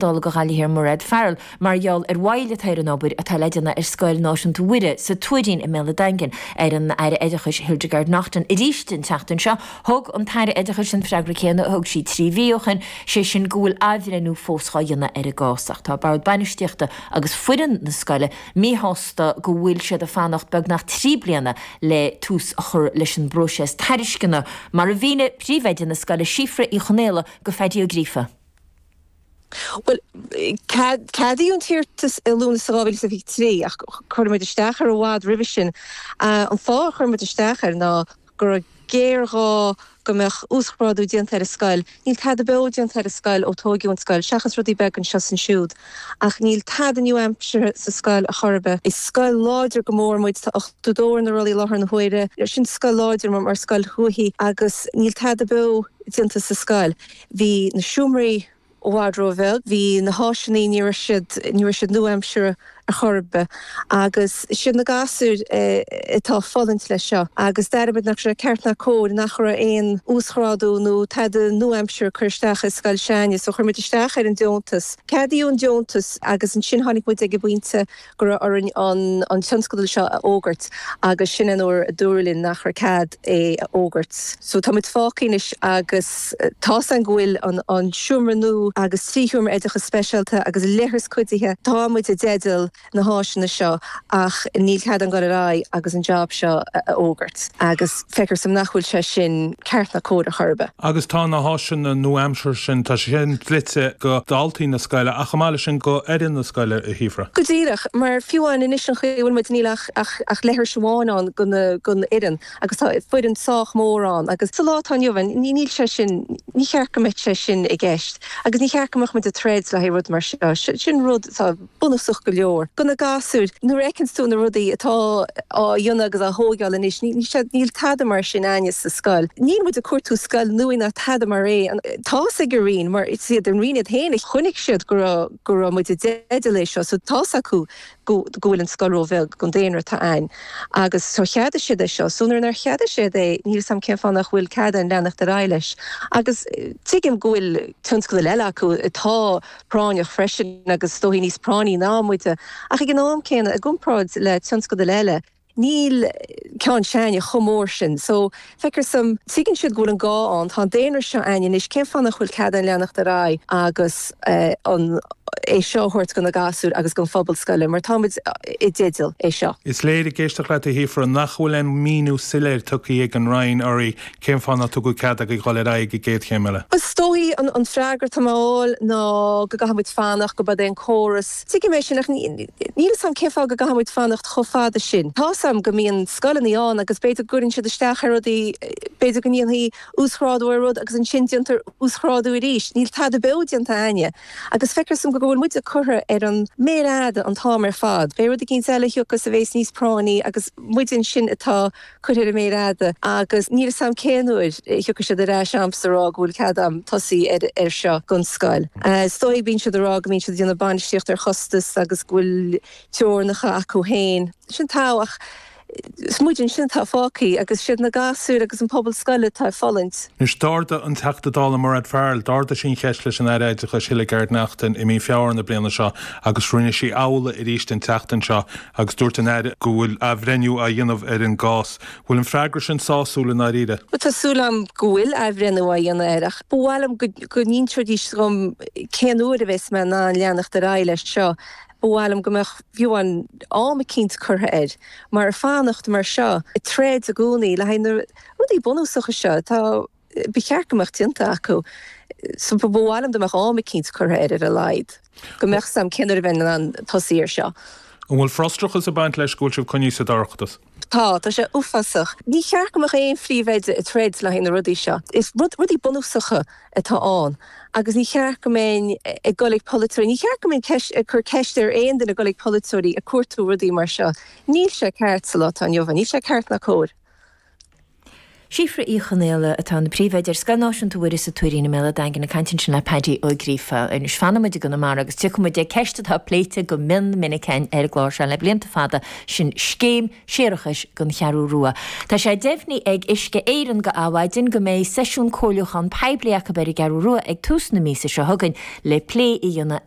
Dála Ghaillimh Thiar Mairéad Farrell mar gheall ar mhoill atá ar an obair atá le déanamh ar Scoil Náisiúnta Mhuire sa Tuairín i mBéal an Daingin ar an Aire Oideachais Hildegarde Naughton arís an tseachtain seo. Thug an tAire Oideachais an freagra céanna a thug sí trí mhí ó shin, sé sin go bhfuil athbhreithniú fós dhá dhéanamh ar an gcás ach tá Bord Bainistíochta agus foireann na scoile míshásta go bhfuil siad ag fanacht beagnach trí bliana le tús a chur leis an bpróiseas tairisceana mar a mhínigh Príomhoide na scoile Síofra Uí Chonaola go Phádaí Ó Gríofa. Bhuel, ceadaíodh an t-iarratas i Lúnasa 2023 ach chuir muid isteach air i bhfad roimhe sin. An fáth ar chuir muid isteach air ná go raibh géarghá go mbeadh uasghrádú déanta ar an scoil. Níl tada beo déanta ar an scoil ó tóigeadh an scoil, seachas rudaí beaga anseo is ansiúd, ach níl tada nua-aimseartha sa scoil ar chor ar bith. Is scoil láidir go mór muid, tá 80 ar na rollaí i láthair na huaire, sin scoil láidir mar scoil thuaithe agus níl tada beo déanta sa scoil. Bhí na seomraí i bhfad ró-bheag, bhí na háiseanna, ní raibh siad, ní raibh siad nua-aimseartha ar chor ar bith agus 'siad na gasúir atá ag fulaingt leis seo agus d'airigh muid nach raibh sé ceart ná cóir nach raibh aon uasghrádú nó tada nua-aimseartha á chur isteach sa scoil s'againne so chuir muid isteach ar an deontas, ceadaíodh an deontas agus ansin tháinig muid ag an bpointe go raibh orainn an tionscadal seo a fhógairt agus sin an uair a dúradh linn nach raibh cead é a fhógairt. So tá muid fágtha anois agus tá a fhios a'inn go bhfuil an seomra nua agus trí sheomra oideachas speisialta agus leithreas cuidithe, tá muid i dteideal na háiseanna seo ach níl cead a'inn gabháil ar aghaidh agus an jab seo a fhógairt agus. Feictear dom nach bhfuil sé sin ceart ná cóir ar chor ar bith. Agus tá na háiseanna nua-aimseartha sin, tá sé sin dlite go daltaí na scoile ach chomh maith leis sin go fhoireann na scoile a Shíofra. Go díreach, mar fiú amháin anois an chaoi a bhfuil muid níl ach leithreas amháin ann gon fhoireann agus tá foireann sách mór ann agus sa lá atá inniu ann níl sé sin, ní cheart go mbeadh sé sin i gceist agus ní cheart go mbeadh muid ag troid le haghaidh rud mar seo. Sin rud atá. bunúsach go leor do na gasúir. Nuair a fheiceanns tú na rudaí atá á dhéanamh agus á thóigeáil anois, níl tada mar sin a'inne sa scoil. Níl muid ag cuartú scoil nua ná tada mar é. Tá's ag an Roinn, mar is iad an Roinn iad féin a chonaic siad go raibh muid i dteideal é seo, so tá's acu go bhfuil an scoil ró-bheag don daonra atá ann agus so cheadaigh siad é seo. So nuair a cheadaigh siad é, níl 'fhios a'm cén fáth nach bhfuil cead a'inn leanacht ar aghaidh leis agus tuigim go bhfuil tionscadail eile acu atá. práinneach freisin agus is dóigh níos práinní ná muid, ach ag an am céanna i gcomparáid le tionscadail eile níl ceann s'againne chomh mór sin so feictear dhom tuigeann siad go bhfuil an gá ann tá an daonra seo a'inne anois cén fáth nach bhfuil cead a'inn leanacht ar aghaidh agus é seo a thabhairt go na gasúir agus gon phobal scoile mar tá muid i dteideal é seo. Is léir ag éisteacht leat a Shíofra nach bhfuil aon mhíniú soiléir tugtha ag an Roinn, urraí, Cén fáth nár tugadh cead dhaoibh dul ar aghaidh go dtí an gcéad chéim eile? Is dóigh an freagra atá mé a fháil ná go gcaithfimid fanacht, gurb in é an córas. Tuigim é sin ach níl 'fhios a'm cén fáth go gcaithfimid fanacht chomh fada sin. Tá's a'm go mbíonn scoileanna ann agus b'fhéidir go gcuireann siad isteach ar rudaí, b'fhéidir go ndéanfaí uasghrádú ar rud agus ansin déantar uasghrádú arís. Níl tada beo déanta a'inne agus feictear dhom go go bhfuil muide curtha ar an méar fhada an t-am ar fad. Beidh rud eicínt eile a thiocfas a bheas níos práinní agus muide ansin atá. curtha ar an méar fhada agus níl 'fhios a'm cén uair a thiocfaidh siad ar ais a'm ag rá go bhfuil cead a'm tosaí ar ar seo dhon scoil. Is dóigh bíonn siad a' rá go mbíonn siad a' déanamh bainistíocht ar chostas agus go bhfuil teorainneacha acu féin. Sin togha ach is muid ansin atá fágthaí agus siad na gasúir agus an pobal scoile atá ag fulaingt. Anois, d'ardaigh an Teachta Dála Mairéad Farrell, d'ardaigh sí an cheist leis an Aire Oideachais Hildegarde Naughton i mí Feabhra na bliana seo agus rinne sí amhlaidh arís an tseachtain seo agus dúirt an Aire go bhfuil athbhreithniú á dhéanamh ar an gcás. Bhfuil an freagra sin sásúil i ndáiríre? Bhuel, tá súil agam go bhfuil athbhreithniú á dhéanamh air ach ba mhaith liom go n-inseoidís dhom cén uair a bheas mé in ann leanacht ar aghaidh leis seo. Ba mhaith liom go mbeadh, fiú amháin, am eicínt curtha air mar fanacht mar seo, troid i gcónaí le haghaidh na rudaí bunúsacha seo, tá. Ba cheart go mbeadh sé déanta acu so ba mhaith liom dá mbeadh am eicínt curtha air ar a laghad, go mbeadh 'fhios a'm cén uair a bheinn in ann tosaí ar seo. An bhfuil frustrachas ag baint leis go bhfuil sibh coinnithe sa dorchadas? Tá, tá sé uafásach. Ní cheart go mbeadh aon phríomhoide ag troid le haghaidh na rudaí seo. Is rud, rudaí bunúsacha atá ann agus ní cheart go mbeinn ag dul ag polaiteoirí, ní cheart go mbeinn ceist, ag cur ceist ar aon duine ag dul ag polaiteoirí ag cuartú rudaí mar seo. Níl sé ceart sa lá atá inniu ann, níl sé ceart ná cóir. Síofra Uí Chonaola atá ina Príomhoide ar Scoil Náisiúnta Mhuire sa Tuairín i mBéal a' Daingin ag caint ansin le Paddy Ó Gríofa. Anois fanann muid i gConamara agus tiocfaidh muid ag ceist atá pléite go mion minic ar an gclár seo le blianta fada, sin scéim séarachais don Cheathrú Rua. Tá sé deimhnithe ag Uisce Éireann do Adhmhaidin go mbeidh seisiún comhairliúchán poiblí acu ar an gCeathrú Rua ag tús na míosa seo chugainn le plé a dhéanamh ar